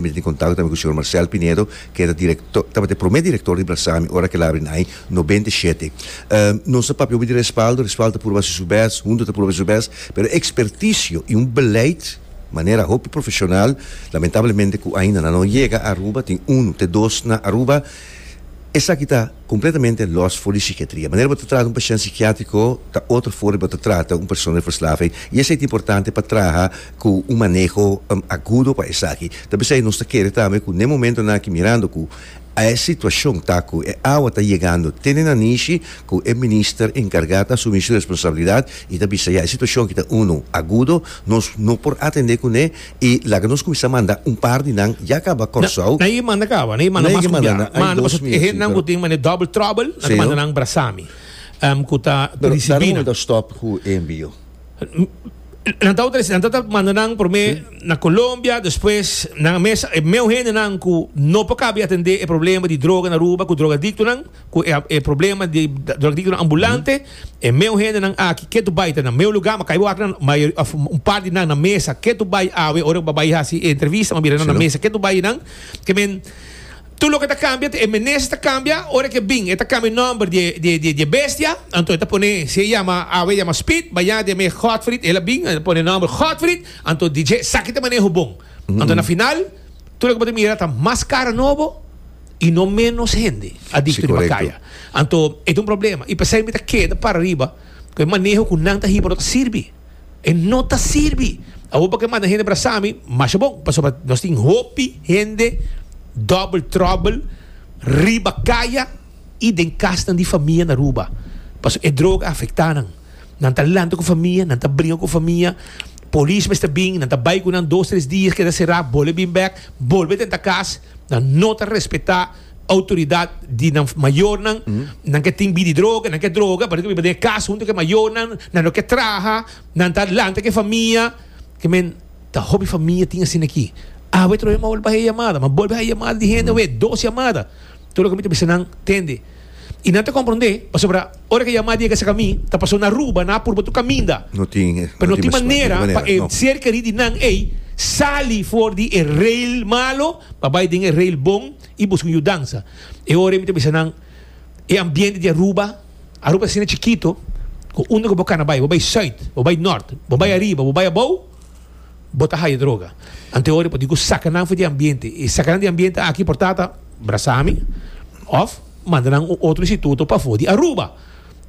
Mi ta tin kontakto tambe ku señor Marcel Pinedo, ke ta direktor, tabata e promé direktor di Brasami ora ku el abri nai nobenta i shete. Nos ta papia obi di respaldo, respaldo ta puru basa su bes, huntu ta puru basa su bes, pero ekspertisio i un beleid manera hopi profeshonal, lamentablemente ku ainda nan no yega Aruba, tin unu te dos na Aruba, esaki ta kompletamente lòs for di sikiatria. Manera bo ta trata un pashènt sikiatriko ta otro for di bo ta trata un persona di verslaving i esei ta importante pa traha. cu un maneho agudo pa esaki. Ta bisa y nos ta kere tambe cu n'e momentonan aki mirando cu a e situacion ta cu e awa ta yegando te na nishi cu e Minister encarga ta asumi su responsabilidad y ta bisa ya e situacion aki ta uno agudo, nos no por atende cu n'e y laga nos cuminsa manda un par di nan ya caba Corsou. Nan e manda caba, nan e manda mas cu bia. Ma anda paso e hende cu tin mane double trouble nan ta manda nan brasami cu ta ricibi nan. Dame un momento stop cu e envio. Nan ta utiliza, nan ta ta manda nan prome na Colombia, despues nan mes e meu hendenan ku no por kabi atende e problema di droga na Aruba ku drogadiktonan, ku e e problema di drogadiktonan ambulante, e meu hendenan aki ke tu bai ta na meu lugar, ma kai bo aki nan mayo òf un par di nan na mesa ke tu bai awe ora bo bai hasi e entrevista, ma mira nan na mesa ke tu bai nan, ke men Tur loke ta kambia, e menes ta kambia, ora ke bin e ta kambia nòmber di e bestia, anto e ta pone, si e yama awe e yama Speed, bañá den mes Godfried, el a bin, el a pone nòmber Godfried, anto di dje esaki ta maneho bon. Anto na final, tur loke bo ta mira ta mas kara nobo i no ménos hende a dikto riba kaya. Anto e ta un problema, i p'esei mi ta keda para riba ku e maneho ku nan ta hiba no ta sirbi. E no ta sirbi. Awor por ke manda hende para Sami, masha bon, pasobra nos tin hopi hende double trouble riba kaya i den kasnan di famia na Aruba. Paso e droga a afecta nan. Nan ta lanta ku famia, nan ta bringa ku famia. Polis mester bin, nan ta bai ku nan dos tres dia, keda sera, bolbe bin bek, bolbe tenta kas. Nan no ta respeta. Autoridad di nan mayornan, nan ke tin bidi droga, nan ke droga, parece biba den e cas hunto ke mayornan, nan no ke traha, nan ta lanta ke famia, ke men ta hopi famia tin asina aki. Awe trohe m'a bolbe haye yamada, m'a bolbe haye yamada di hende awe, dos yamada, tur loke mi ta bisa nan tende y nan ta compronde pasobra. Ora ke Yamadi a yega serka mi, ta pasó na Aruba, nan a purba tur kaminda, pero no tin manera pa e ser kerí di nan ei sali for di e reil malo pa bai den e reil bon i buska un yudansa. E ora ei mi ta bisa nan, E ambiente di Aruba, Aruba ta asina chikito, ku unda ku bo kana bai, bo bai sùit, bo bai nòrt, bo bai ariba, bo bai abou, bo ta haya droga. Anto e ora ei por diku saka nan for di e ambiente. E saka nan di e ambiente aki por tata brasa mi òf. manda nan un otro instituto pafó di Aruba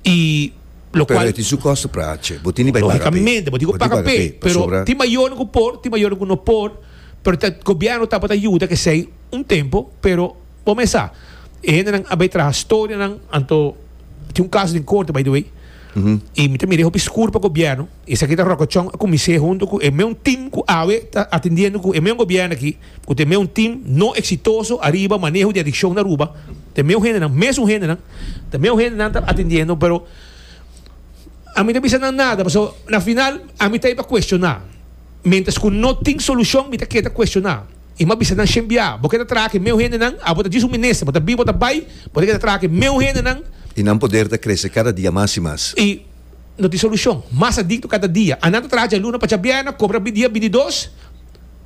y lo cual. Pero e tin su costo pra ace, bo tin di bai paga p'e. Logicamente, bo tin cu paga p'e, pero tin mayornan cu por, tin mayornan cu no por, pero ta gobierno tabata yuda kesey un tempo, pero bo mes sa, e hendenan a bai traha storia nan, anto tin un caso den corte by the way, y mi ta mira e hopi scuur pa gobierno. Esaki ta rokochon a kumins'é huntu ku e meun tim ku awe ta atendiendo ku e meun gobièrnu aki, ku ta e meun tim no eksitoso ariba maneho di adikshon na Aruba. Ta e meun hendenan, mes un hendenan, ta meun hendenan ta atendiendo, pero ami ta bisa nan nada, pasobra na final ami ta ei pa kuestioná. Mientras ku no tin solushon mi ta ke ta kuestioná. I m'a bisa nan shen bia, bo ke ta traha ku e meun hendenan, abo ta djis un minister, bo ta bini, bo ta bai, bo ta ke ta traha ku e meun hendenan. I nan poder ta krese kada dia mas i mas. I. no tin solucion. Mas adicto cada dia. Anan ta traha dje luna pa dje bierna, cobra bini dia, bini dos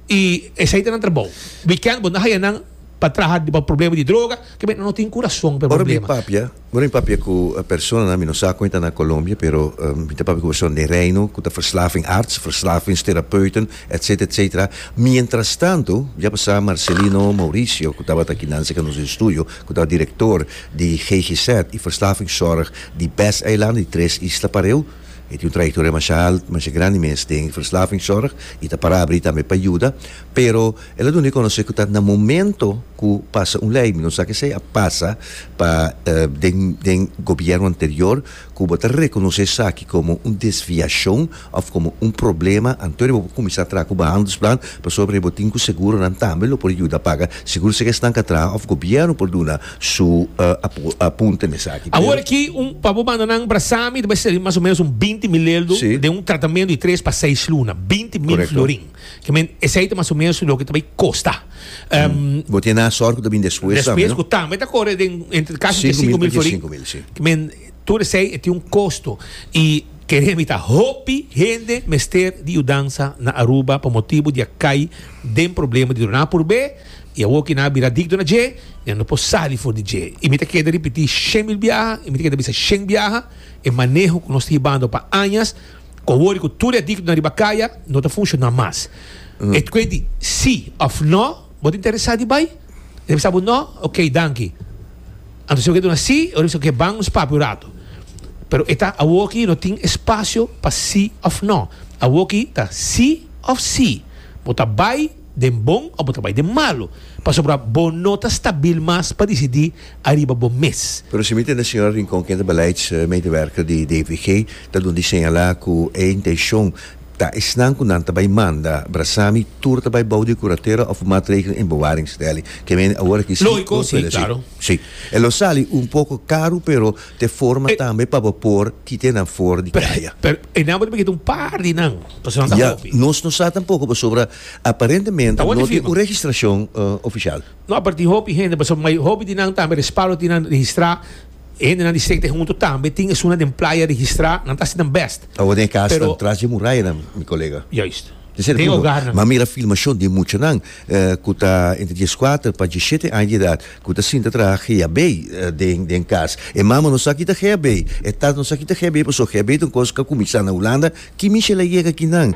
y esey ta nan trabou. Weekend bo no haya nan pa traha riba problema di droga, ke menen no tin curazon pa e Ora mi problema. papia, ora mi papia cu personanan, mi no sa cu enta na Colombia, pero mi ta papia cu personanan den Reino cu ta verslavingarts, verslavingstherapeuten, etcetera, etcetera. Mientras tanto, ya pasa Marcelino Mauricio cu tabata aki nan cerca nos estudio, cu ta director di GGZ y verslavingzorg Di Best Eilanden, di Tres Isla Pareu, e tin un trayectoria masha alt, masha grandi mes den verslavingssorg y ta para abri tambe pa yuda, pero el a duna e conoce cu ta na momento cu pasa un ley, mi no sa kesey a pasa pa den den gobierno anterior cu bo ta reconoce esaki como un desviacion òf komo un problema, anto di bo por kuminsá traha ku behandelsplan pasobra di bo tin ku seguronan tambe lo por yuda paga segur si esnan ka traha òf gobièrnu por duna su apunte mesaki. Awor aki un pa bo manda nan para Sami ta bai serbí mas o ménos un binti mil leldo den un tratamentu di tres pa seis luna, binti mil florin. Ke men esei ta mas o ménos loke ta bai kosta. Bo tin nan sòrt ku ta bini despues tambe, no? Despues ku tambe ta kore den entre kas di tres sinku mil ta dies sinku mil, si. Ke men. Tur esei e tin un kosto i kere mi ta hopi hende mester di yudansa na Aruba pa motibu di a kai den problema di duna purbé i awoki nan a bira dikto na dje i nan no por sali for di dje i mi ta keda ripití shen mil biaha i mi ta keda bisa shen biaha e maneho ku nos ta hibando pa añas ku awor di ku tur e adiktonan riba kaya no ta funshoná mas e kuent di sí òf no. Bo ta interesá di bai? Debe sa bo no. Ok, danki. Anto si bo ke duna sí o debe sa bo ke ban nos papia un ratu. Pero e ta awoki no tin espasio pa sí òf no. Awoki ta sí òf sí. Bo ta bai den bon òf bo ta bai den malu. Pasobra bo no ta stabil mas pa disidí ariba bo mes. Pero si mi tende señora Rincon, kende beleidsmedewerker di DVG, ta duna di señalá ku e intenshon Ta esnan ku nan ta bai manda brasa mi, tur ta bai bou di kuratera òf maatregelen en bewaringstelling. Ke mene awor aki si o vèlè si. Si. E lo sali un poko karu pero t'e forma tambe pa bo por kita e nan for di kaya. Pero e nan bo ta bigeta un par di nan, pasobra nan ta hopi. Ya. Nos no sa tampoko pasobra aparentemente no tin un registrashon ofishal. No, pero tin hopi hende, pasobra hopi di nan tambe respaldo tin nan registrá. Hendenan di State huntu tambe tin esunnan den playa registrá, nan ta hasi nan bèst. Awor den e kasanan tras dje murayanan, mi kolega. Juist. Den ser Den punto, ogarnan. m'a mira filmashon di muchanan ku ta entre dieskuater pa diesshete aña di edat ku ta sinta traha geabei den den kas. E mama no sa ki ta geabei, e tata no sa ki ta geabei, pasobra geabei ta un kos ku a kuminsá na Hulanda. Ki mishel a yega aki nan?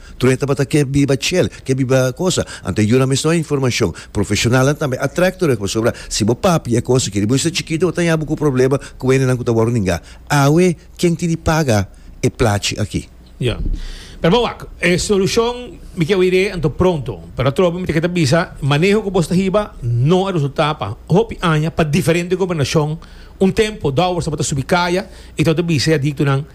Troje tabata ke biba chel, ke biba cosa. Anto e yuna meston informacion. Profesionalnan tambe a track troje pasobra si bo papi e cosa ke riba ysta chikito bo ta yabu ku problema ku wenenan ku ta wòrdu ninga. Awe ken tin di paga e plachi aki? Ya. Pero bo wak, e solucion mi ke oir'e anto pronto. Pero atrobe mi tin ke ta bisa, maneho ku bo sta hiba no a resulta pa hopi aña pa diferente gobernacion. Un tempo Dowers tabata subi kaya y tabata bisa e adictonan,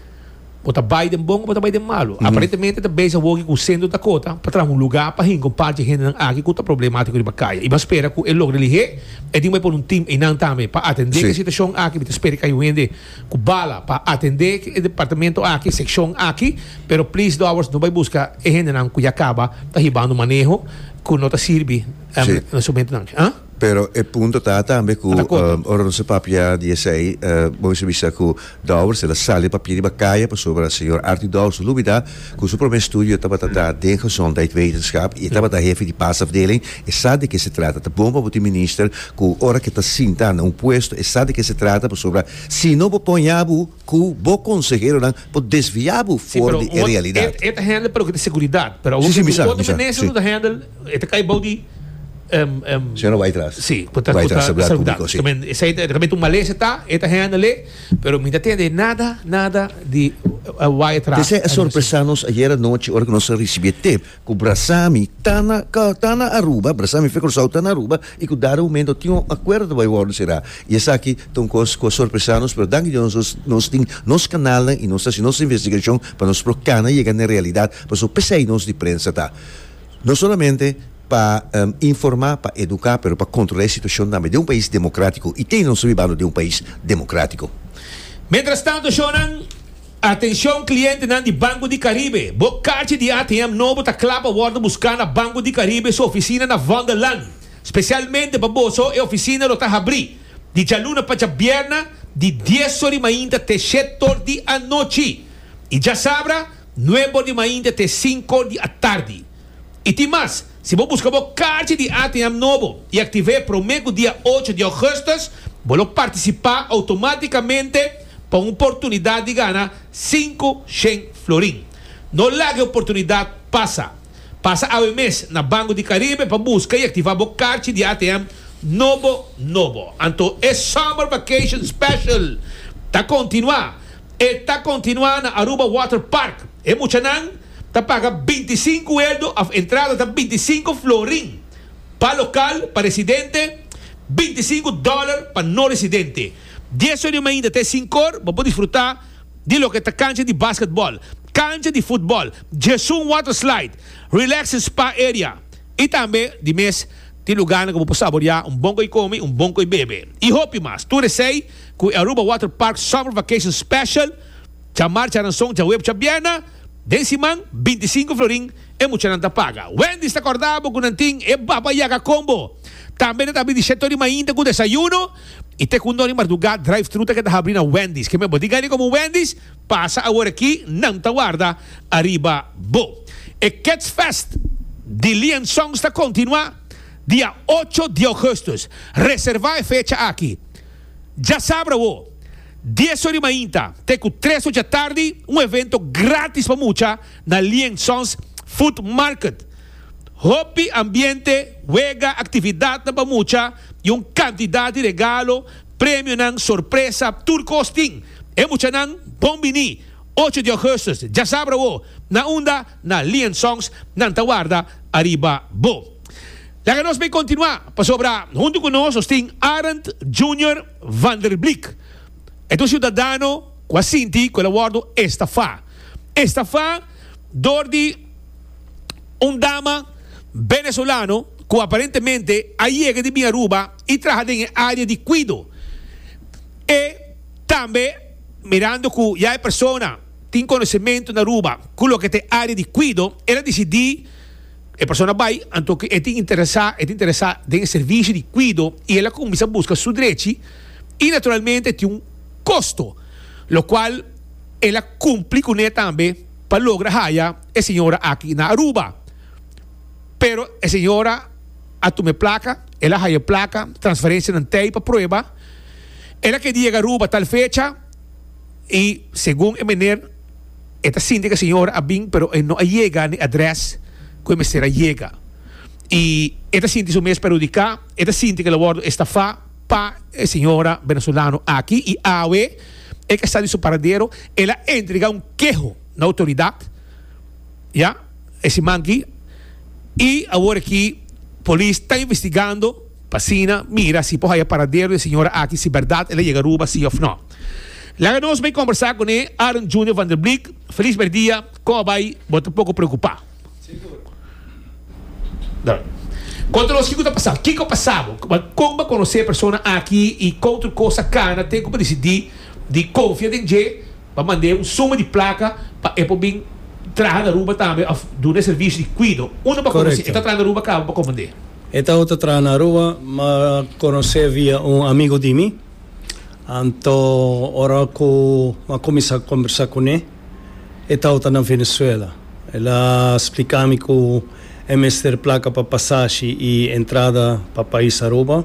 Bo ta bai den bon o bo ta bai den malu. Aparentemente ta bezig awoki ku Sentro Dakota pa traha un lugá pa hinka un parchi hendenan aki ku ta problemátiko riba kaya. I bo a spera ku e lo religé e tin bai pone un tim einan tambe pa atendé ku e situashon aki. Mi ta spera ku kai un hende ku bala pa atendé e departamento aki, e sekshon aki, pero plis dòbers no bai buska e hendenan ku ya kaba ta hibando maneho ku no ta sirbi na su mentunan. Pero e punto ta tambe ku ora nos a papia di esei bo mester bisa ku Dowers el a sali a papia riba kaya pasobra señor Artie Dowers no lubida ku su prome estudio tabata ta den Gezondheidwetenschap i e tabata hefe di pasafdeling e sa di ke se trata. Ta bon pa bo tin minister ku ora ke ta sinta na un puesto e sa di ke se trata pasobra si no bo pon yabu cu bo conseheronan por desvia bo for di e realidad. E ta handle pa loke ta seguridad, pero awo cu otro minister lo ta handle, e ta cay bao di. Señora Wytras. Si, cu ta saludando. Esey ta realmente un malesa ta, e ta handle e, pero mi no ta tende nada, nada di Wytras. Esey a sorpresa nos ayer anochi ora cu nos a ricibi e tip Ku Brasami ta na ka ta na Aruba, Brasami Fe Kòrsou ta na Aruba i ku dado momento tin un akuerdo ku bai wòrdu será. I esaki ta un kos ku a sorpresá nos, pero danki Dios nos nos tin nos kanalnan i nos ta hasi nos investigashon pa nos por kana yega na e realidat. Pasó p'esei nos di prensa ta no solamente pa informá, pa eduká pero pa kontrolá e situashon tambe den un pais demokratiko i te nos ta bibando den un pais demokratiko. Mientras tanto, shownan. Atencion clientenan di Banco di Caribe, bo carchi di ATM nobo ta cla pa wordo busca na Banco di Caribe su oficina na Vondellaan, specialmente pa boso e oficina lo ta habri di djaluna pa djabierna di dies or di mainta te shet or di anochi y djasabra nuebe or di mainta te sink or di atardi. Y tin mas, si bo busca bo carchi di ATM nobo y active prome cu dia ocho di augustus, bo lo participa automaticamente Pa un oportunidat di gana sinku shen florin. No laga e oportunidat pasa. Pasa awe mes na Banco di Caribe pa buska i aktiva bo karchi di ATM nobo nobo. Anto e Summer Vacation Special ta kontinuá. E ta kontinuá na Aruba Water Park. E muchanan ta paga binti i sinku eldo òf entrada ta binti i sinku florin pa lokal pa residente, binti i sinku dòler pa no residente. Dies oren mainta te sinkor bo por disfruta di loke ta kancha di basketball, kancha di futbol, Jesun Water Slide, Relax and Spa Area i tambe di mes tin lugarnan ku bo por saboriá un bon koe kome, un bon koe bebe i hopi mas. Tur esei ku e Aruba Water Park Summer Vacation Special dja marcha ranson djaweep djabièrnè den siman binti sinku florin e muchanan ta paga. Wendy's ta kòrda bo ku nan tin e baba yaka kombo. Tambe nan ta abri di shèt oren mainta ku desayuno. I te kundó di mardugá drive-thru ta keda habri na Wendy's. Keme bo di gani komo Wendy's? Pasa awor aki, nan ta warda ariba bo. E Ketsfest di Lian Songs ta kontinuá dia ocho di Ougustus. Reservá e fecha aki. Dja sabra awo, dies or di mainta te ku tres or dja tardi, un evento grátis pa mucha na Lian Songs Food Market. Hopi ambiente, wega, actividadnan pa mucha y un cantidad di regalo, premionan, sorpresa, tur cos tin. E muchanan bon bini ocho di augustus djasabra awo na unda na Lian Songs nan ta warda ariba bo. Laga nos bay continua pasobra hunto cu nos nos tin Arend Junior Vanderblik. E ta un ciudadano cu a sinti cu el a wordo estafa. Estafa door di. Un dama Venezolano cu aparentemente a yega di bin Aruba y traha den e area di cuido. E tambe mirando cu ya e persona tin conocemento na Aruba cu loke ta e area di cuido, el a dicidi, e persona bay anto cu e tin interesa, e ta interesa den e servicio di cuido y el a cuminsa busca su drechi y naturalmente tin un costo, locual el a cumpli cu ne tambe. pa logra haya e señora aki na Aruba. Pero e señora a tuma e plaka, el a haya e plaka, transferencianan t'ey pa prueba. El a kedi yega Aruba tal fecha y segun e meneer e ta sinti cu e señora a bin pero e no a yega n'e adres cu e mester a yega y e ta sinti su mes perhudica, e ta sinti cu el a wordo estafa. Pa e señora venezolano aki y awe e ke sa di su paradero el a entrega un keho na autoridad ya e siman ki y awor aki polis ta investigando pa asina mira si por haya paradero di e señora aki si berdad el a yega Aruba si of no. Laga nos bay combersa cune Aaron Junior Vanderbleek, Feliz Berdia, Coba bay bo ta poco preocupa. Konta nos kiko ta pasá. Kiko pasá bo? Kon bo konosé e persona aki i kon tur kos a kana te ku bo disidí di konfia den dje? Bo a mand'é un suma di plaka pa e por bin traha na Aruba tambe òf duna e servisio di kuido. Unda bo a konos'é? E ta traha na Aruba ka bo a komand'é? E ta ota traha na Aruba, ma konos'é via un amigu di mi. Anto ora ku bo a kuminsá kombersá kuné. e tauta na Venezuela. El a spliká mi ku e mester plaka pa pasashi i entrada pa pais Aruba,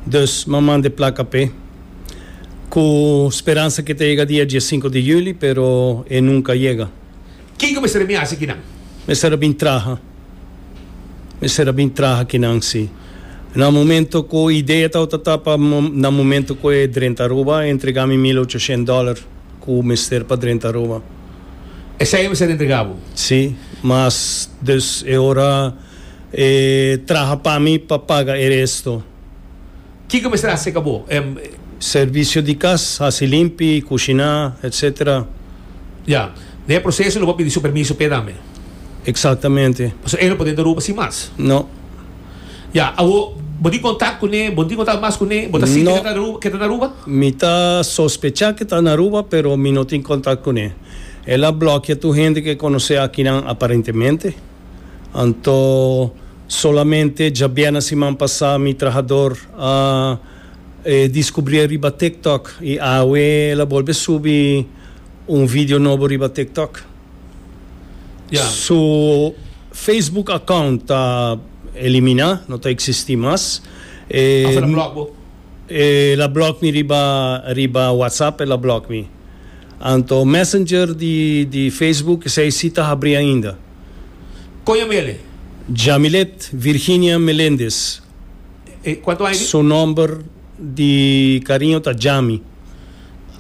dus m'a manda e plaka p'e, ku speransa ke ta yega dia diesinku di yüli, pero e nunka yega. Ki ku mester mi hasi ki nan? Mester a bin traha. Mester a bin traha ki nan, si. Na momentu ku idea tauta ta pa, na momentu ku e drenta Aruba, e entregá mi mil ocho shent dòler. Cu mester pa drenta Roma. Esey e mester di entrega bo. Si, mas dus e ora e traha pa mi pa paga e resto. Kico mester haci ca bo? E. Servicio di cas, haci limpi, cushina, etc. Ya. Na e proceso lo bo a pidi su permiso p'e dame. Exactamente. Pasobra ey no por drenta Roma sin mas. No. Ya, awor bo tin contact cu ne, bo tin contact mas cu ne, bo ta sinti que ta Aruba, que ta na Aruba? Mi ta sospecha que ta na Aruba, pero mi no tin contact cu ne. El a blokia tur hende que conoce akinan aparentemente. Anto, solamente djabièrna siman pasá mi trahador a e discubrié riba TikTok y awe el a bolbe subi un video nobo riba TikTok. Su Facebook account ta elimina, no ta existi mas. E a block bo? E la block mi riba riba WhatsApp el a block mi. Anto Messenger di di Facebook esei si ta habri ainda. Con yo bele? Jamilet Virginia Melendez. E cuanto aña di? Su nomber di cariño ta Jami.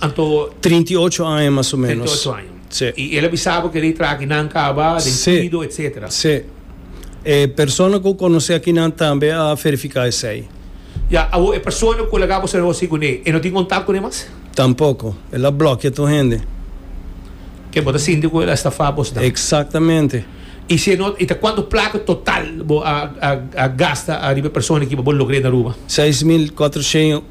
Anto. Trinta i ocho aña mas o menos. Trinta i ocho aña. Sí. I el a bisa bo keda e traha ki nan kaba den kuido etsetera. Sí, sí. E persona ku konosé akinan tambe a verifiká esei. Ya, awor e persona ku laga bo sa negoshi kuné, e no tin kontak kuné mas? Tampoko. El a blòkia tur hende. Ke bo ta sinti ku el a estafá bos dan? Eksaktamente. I si e no, i ta kuantu plaka total bo a gasta ariba e persona kiba bo logr'é na Aruba? Seis mil kuatroshen.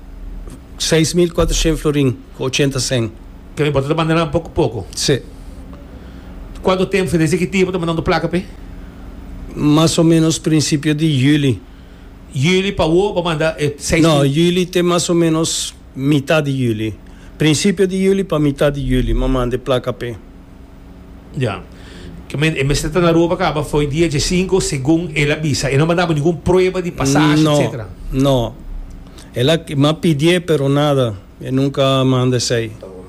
seis mil kuater shen florin ku ochenta sen. Ke bo ta ta manda nan poku poku? Sí. Kuantu tempu desde ki dia bo ta manda un plaka p'e? Mas o menos prinsipio di juli. Juli pa wou bo manda e seis mil? No, juli te mas o menos mitat di juli. Prinsipio di juli pa mitat di juli, m'a manda e plaka p'e. Ya. Ke men, e mester ta na Aruba kaba fo'i dia dje sinku, segun el a bisa. E no a mandabo ningun prueba di pasashi, No, etsetera. no. El a ki, m'a pidié, pero nada. E nunka a manda esei. Ta bon.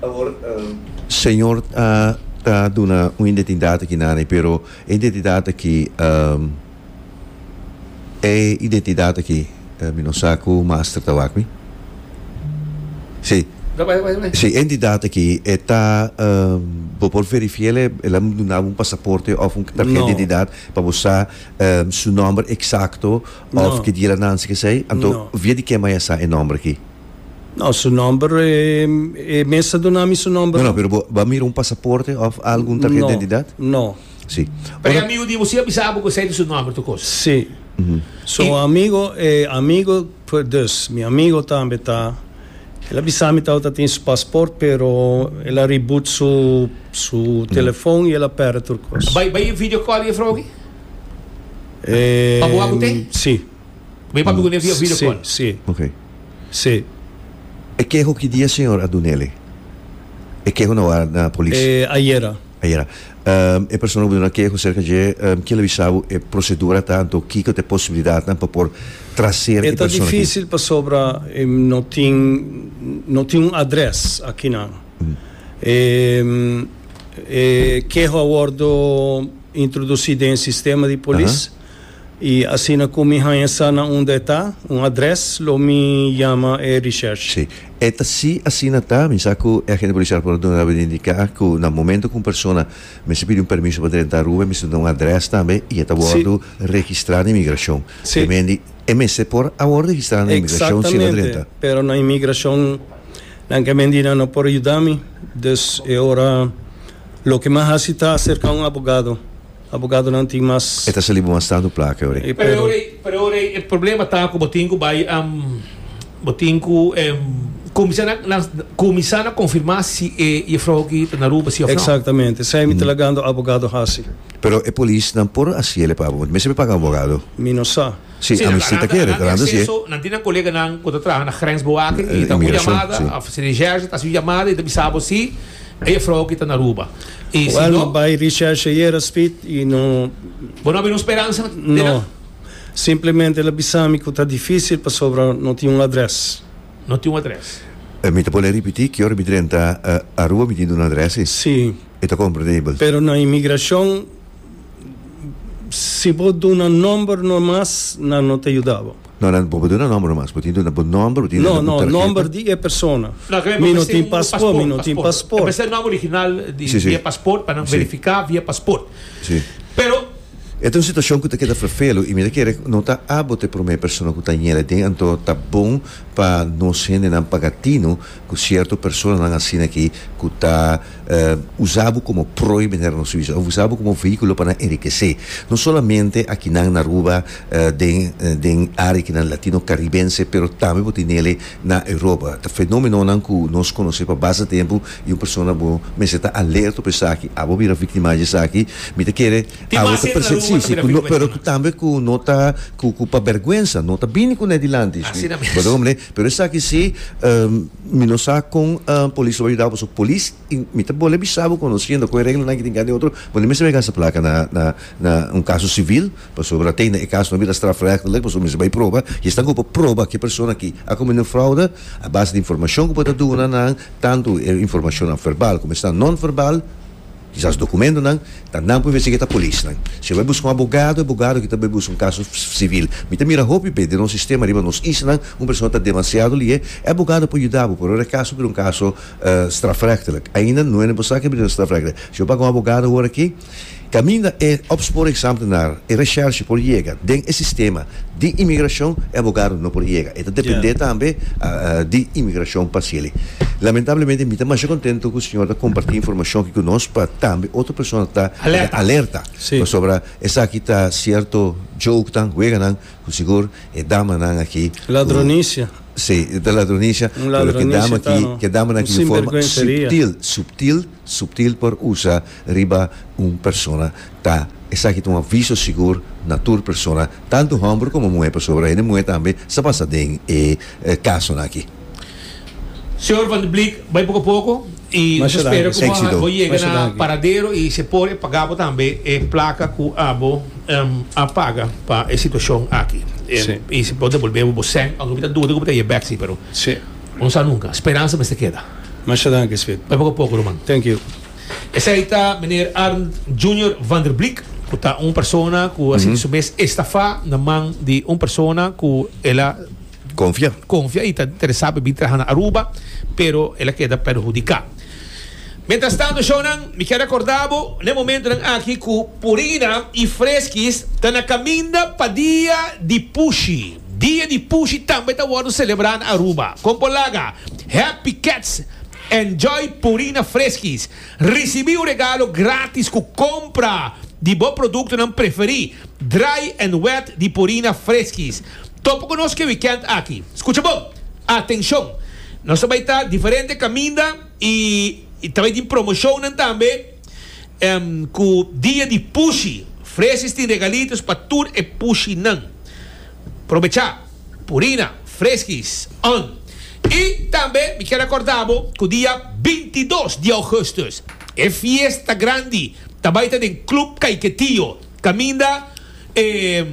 Awor, eh. Señor a ta duna un identidat aki na anei, pero e identidat aki, eh. E identidad aki mi no sa cu master ta wak mi. Si. No bay, bay, bay. Si e entidad aki e ta bo por verifica el el a duna bo un pasaporte of un tarjeta di identidad pa bo sa su nomber exacto of ki dia el a nanci kesey anto via di ke maya sa e nomber aki? No, su nomber e mes a duna mi su nomber. No, no, pero bo a mira un pasaporte of algo un tarjeta di identidad? No. Sí. Pero e Ora- amigo di bo sí a bisa abo cu esey ta su nomber tu cosa. Sí. So Y- amigo, e amigo, pue, dus, mi amigo tambe ta, el a bisa mi tabata tin su pasport, pero el a reboot su, su telefon y el a perde tur cos. Bay, bay video call e vrouki? Eh, Pa boa cu te? Sí. Bay papi cu ne via video Sí, call. sí, Ok. sí. E ke hoki dia, señor, a dunele? E ke ho na wara na polis? Eh, ayera. Ayera. E persona ku bo duna keho aserka dje, kiel a bisa bo e prosedura ta, anto kiko ta e posibilidatnan pa por trasera e persona aki? E ta difísil pasobra no tin no tin un adrès akinan. E e keho a wòrdu introdusí den e sistema di polis. I asina ku mi haña sa na unda e ta, un adrès, lo mi yama e Richard. Sí, e ta sí, asina ta. Mi sa ku e agente polisial por a duna Ruben indiká ku na momentu ku un persona mester pidi un permiso pa drenta Ruben mester duna un adrès tambe i e ta wòrdu registrá na imigrashon. Te mendi e mester por a wòrdu registrá na imigrashon si el a drenta. Eksaktamente, pero na imigrashon nan ke mendi nan no por yuda mi. Dus e ora loke mi a hasi ta serká un abogado. Abogadonan tin mas. E ta sali bo mas tantu plaka ora ei. Pero ora ei, pero ora ei e problema ta ku bo tin ku bai bo tin ku kuminsá na na kuminsá na konfirmá si e jefrou aki ta na Aruba si òf no. Eksaktamente. Esei mi ta lagando abogado hasi. Pero e polisnan por hasiel e pa bo? Bo ta mester paga un abogado. Mi no sa. Si nan ta nan e acceso, nan tin nan coleganan cu ta traha na grensbewaking y e ta hopi jamada of si recherche ta haci jamada y ta bisa bo si e juffrouw aki ta na Aruba y si no. Well no bay recherche ayera Speed y no. Bo no a bini speransa den nan? No, simplemente el a bisa mi cu ta dificil pasobra no tin un adres. No tin un adres. Mi ta pone repeti ki ora mi drenta Aruba mi tin un adres si. Si. E ta compradable. Pero na inmigracion. Si bo duna nomber no mas nan no ta yuda bo. No nan bo duna nomber no mas bo tin duna bo nomber bo tin duna un tarheta. No no nomber di e persona mi no tin pasport mi no tin pasport. Empecé un nomber original di e pasport pa nan verifica via pasport pero. E ta un situacion cu ta keda vervelu y mi ta kere no ta abo ta e prome persona cu ta yende tin anto ta bon pa nos hende nan paga tino Cu cierto personanan asina aki cu ta usa bo como prooi manera nos bisa of usa bo como vehiculo pa nan enriquece. No solamente akinan na Aruba den den area kinan Latino Caribense pero tambe bo tin nele na Europa. Ta fenomenonan cu nos conoce pa basta tempo y un persona bo mester ta alerta op esaki. Abo bira victimanan di esaki. Mi ta kere abo ta presente si si cu no pero cu tambe cu no ta cu cu pa berguensa no ta bini cu ne dilanti. Bo ta comprende? Pero esaki si, mi no sa kon polis lo bay yuda bo, so polis y mi ta bole bisa bo conociendo con e reglanan aki tin kende otro bo no mester bay gasta placa na na na un caso civil pasobra te na e caso no bira strafrechtelijk pasobra mester bay proba y esnan hopi proba ke persona aki a comendo un fraude a base di informacion ku bo ta duna nan tanto e informacionnan verbal como esnan non verbal. Kisas dokumentonan ta nan puebes eke ta polisnan. Si e bai buska un abogado, e abogado eki ta bai buska un kaso sivil. Mi ta mira hopi be den nos sistema riba nos isla, un persona ta demasiado lié, e abogado por yuda bo, pero ora e kaso bira un kaso strafrechtelijk, ainda no hende por sa ke bira na strafrechtelijk. Si bo paga un abogado ora aki, kaminda e opsporingsamtenaar, e reshershi por yega den e sistema, Di imigrashon e abogado no por yega. E ta dependé tambe di imigrashon pa seli. Lamentablemente mi ta masha kontentu ku señor ta kompartí informashon aki ku nos pa tambe otro persona ta alerta. Pasobra esaki ta sierto jokenan, weganan ku sigur e damanan aki ku Ladronisha. Si, e ta ladronisha. Pero ke dama aki, ke damanan aki di forma suptil, suptil. Subtil por usa riba un persona ta esaki ta un aviso sigur na tur persona, tantu hòmber komo muhé, pasobra hende muhé tambe sa pasa den e kasonan aki. Señor Van de Bleek bai poco a poco y nos ta spera cu bo yega na paradero y si e por e paga bo tambe e placa cu abo a paga pa e situacion aki y si bo devolbe bo bo cen aunke mi ta duda cu bo ta yebek si pero. Un sa nunka. Speransa mester keda. Masha danki Smit. Bai poko poko ruman. Thank you. Esei ta Meneer Arnd Junior van der Bleek, ku ta un persona ku a sinti su mes estafá na man di un persona ku el a Konfia. konfia i ta interesá pa e bin traha na Aruba, pero el a keda perhudiká. Mientrastantu, shownan, mi kier rekordá bo na e momentunan aki ku Purina i Freskis ta na kaminda pa dia di pushi. Dia di Pushi tambe ta wordo selebrá na Aruba. Kon por laga? Happy Cats Enjoy Purina Freskis! Risibí un regalo grátis ku kompra di bo produktonan preferí, Dry and Wet di Purina Freskis. Topa ku nos ke wikènt aki. Skucha bon! Atenshon! Nos ta bai ta diferente kaminda i ta bai tin promoshonnan tambe. Ku dia di pushi, Fresis tin regalitos pa tur e pushinan. Probechá, Purina, Freskis, on. I tambe mi kier a korda bo ku dia binti dos di ougustus e fiesta grandi ta bai ta den Club Kaiketio kaminda e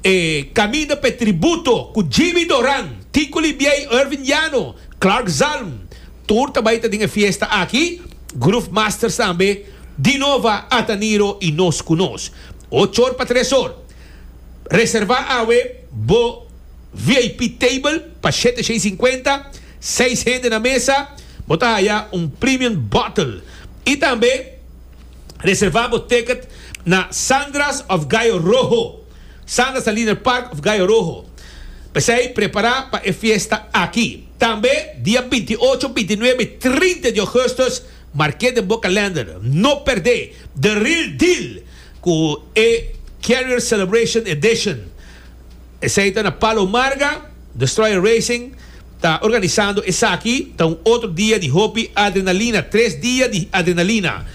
e kaminda pa e tributo ku Jimmy Doran, Tico Libiey, Irvin Llano, Clark Zalm tur ta bai ta den e fiesta aki. Groove Masters tambe di nova a ta Niro y nos cu nos. Ocho or pa tres or. Reserva awe bo VIP table pa shete shei cincuenta, seis hende na mesa, bo ta haya un premium bottle. Y tambe reserva bo ticket na Sandra's of Gayo Rojo, Sandra's na Liner Park of Gayo Rojo. P'esey prepara pa e fiesta aki. Tambe dia binti ocho, binti nuebe, trinta di ougustus, marke den bo kalender, no perdé The Real Deal ku e Carrier Celebration Edition. Esei ta na Palo Marga, Destroyer Racing ta organisando esaki, ta un otro dia di hopi adrenalina, tres dia di adrenalina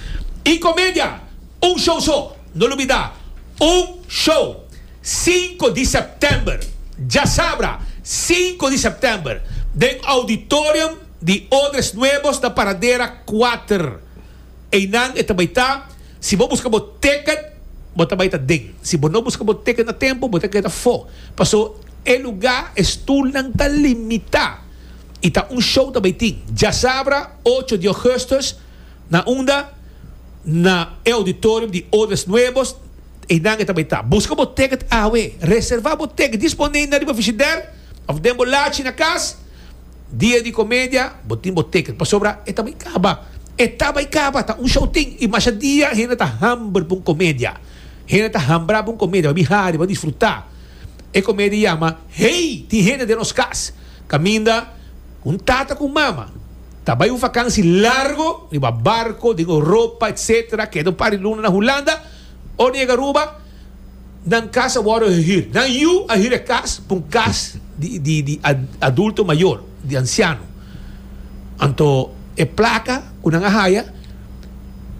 y comedia, un show so! No lubidá, Un show, sinku di sèptèmber, djasabra, sinku di sèptèmber, den Auditorium di Odres Nuevos na Paradera kuater. Einan e ta bai ta, si bo buska bo tèkèt, bo ta bai ta den. Si bo no buska bo tèkèt a tempu, bo ta keda fo. Pasó e lugá, e stulnan ta limitá i ta un show ta bai tin, djasabra, ocho di ogùstùs, Na unda na e auditorium di Odes Nuevos einan e ta bai ta. Buska bo ticket awe. Reserva bo ticket disponey na riba Frigider of den bo lachi na kas. Dia di Comedia bo tin bo ticket pasobra e ta bai kaba. E ta bai kaba, ta un show tin y masha dia hende ta hamber pa un comedia. Hende ta hambra pa un comedia, babi hari, ba disfruta. E comedia yama Hey! Tin hende den nos kas caminda cu un tata cu un mama. Ta bai un vakansi largo riba barco den Europa etc. Keda un par di luna na Hulanda. Ora yega Aruba nan kas a worde hir. Nan yu a hir e kas pa un kas di adulto mayor, di anciano. Anto e placa cu nan a haya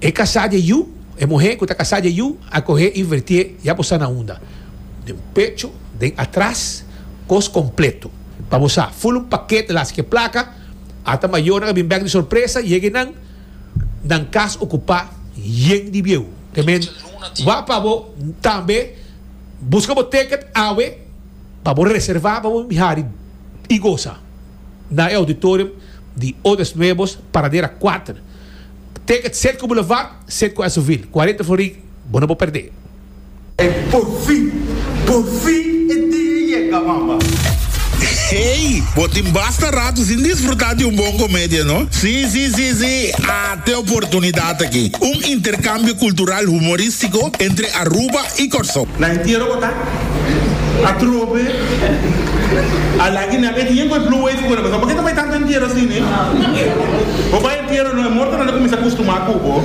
e kasa dje yu, e muhe cu ta kasa dje yu a cohe y vertie ya bo sa na unda. Den pecho, den atras, cos completo. Pa bo sa, full un paket las ki e placa. Ata mayornan a bin bek di sorpresa yega enan, nan kas okupá yen di bieu. Te men wak pa bo tambe buska bo ticket awe pa bo reservá pa bo mihari i gosa na e auditorium di Odes Nuevos, Paradera kuater. Ticket Serco Boulevard, Serco Esovil, cuarenta florin, bo no por perdé. Por fin! Por fin e dia a yega, mama! Hey! Bo tin basta rato sin disfruta di un bon comedia, no? Si, si, si, si! At e oportunidad aki. Un intercambio cultural humoristico entre Aruba y Corsou. Na entiero bo ta? Atrobe! A laki nan e dia cu e blue wave cu nan pasá. Porque ta bay tanto entiero así, ne? Bo bay entiero, no? E mortonan ta cuminsa custumá cu bo.